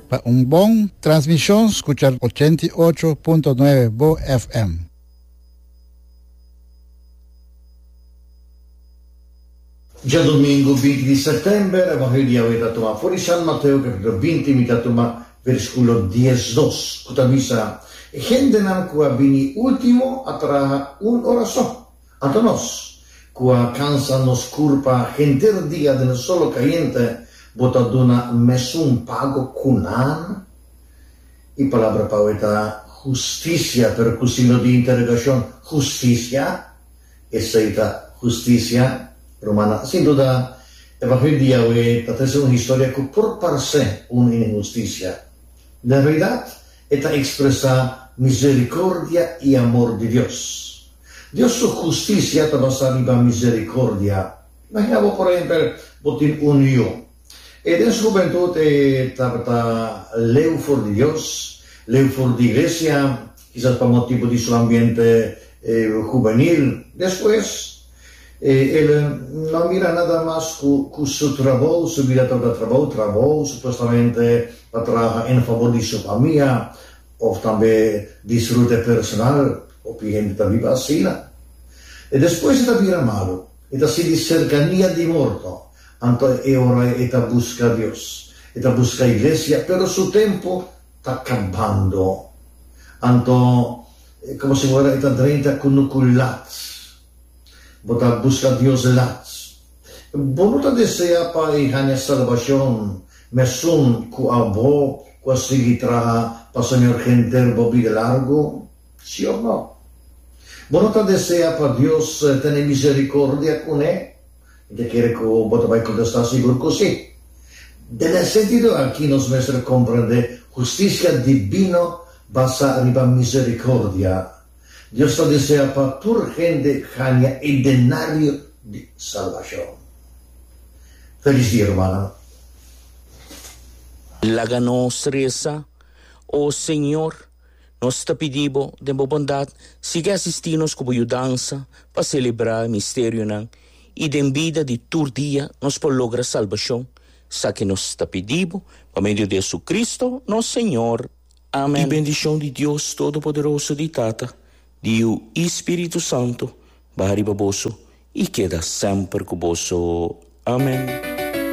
Pa un bon transmishon skucha ochenta i ocho punto nuebe bo FM. Djadomingu binti di sètèmber, Evangelio Yahweh ta tuma for di San Mateo kapítulo binti, mi ta tuma versíkulo dies dos, ku ta bisa, E hendenan ku a bini último a traha un ora so. Anto nos, ku a kansa nos kurpa henter dia den e solo kayente, bo ta duna mesun pago ku nan? E palabra pau ei ta hustisia, pero ku signo di interegashon, hustisia? Esei ta hustisia? Rumana, sin duda, evangelio di Yahweh ta trese un historia ku por parse un inhustisia. Den realidat, E ta ekspresá miserikordia i amor di Dios. Dios su hustisia ta basá riba miserikordia. Imaginá bo, por ehèmpel, bo tin un yu. E den su hubentut e tabata leu for di Dios, leu for di iglesia, kisas pa motibu di su ambiente hubenil. Despues. E el no a mira nada mas cu cu su trabou, su bida ta ta trabou, trabou supuestamente pa traha en fabor di su famia of tambe disfrute personal, hopi hende ta biba asina. E despues e ta bira malu, e ta sinti cercania di morto, anto e ora e ta busca Dios, e ta busca iglesia, pero su tempo ta cabando. Anto. E como si wera e ta drenta cu no cu lats. Bo ta busca Dios lats. Bo no ta desea pa e haña salbacion mesun cu abo cu a sigui traha pa Señor henter bo bida largo? Si of no? Bo no ta desea pa Dios tene misericordia cu ne? I ta kere ku bo ta bai kontestá sigur ku sí. Den e sentido akí nos mester komprendé hustisia dibino basá riba miserikordia. Dios ta desea pa tur hende haña e denario di salbashon. Felis dia, rumannan! Laga nos resa, O Señor. Nos ta pidi bo, den bo bondat, sigui asisti nos cu bo yudansa pa celebra e misterionan y den bida di tur dia nos por logra salbacion. Esaki nos ta pidi bo pa medio di Jesucristo, nos Señor. Amen. Y bendicion di Dios Todopoderoso, di Tata, di Yiu y Spiritu Santo baha riba boso y keda semper cu boso. Amen.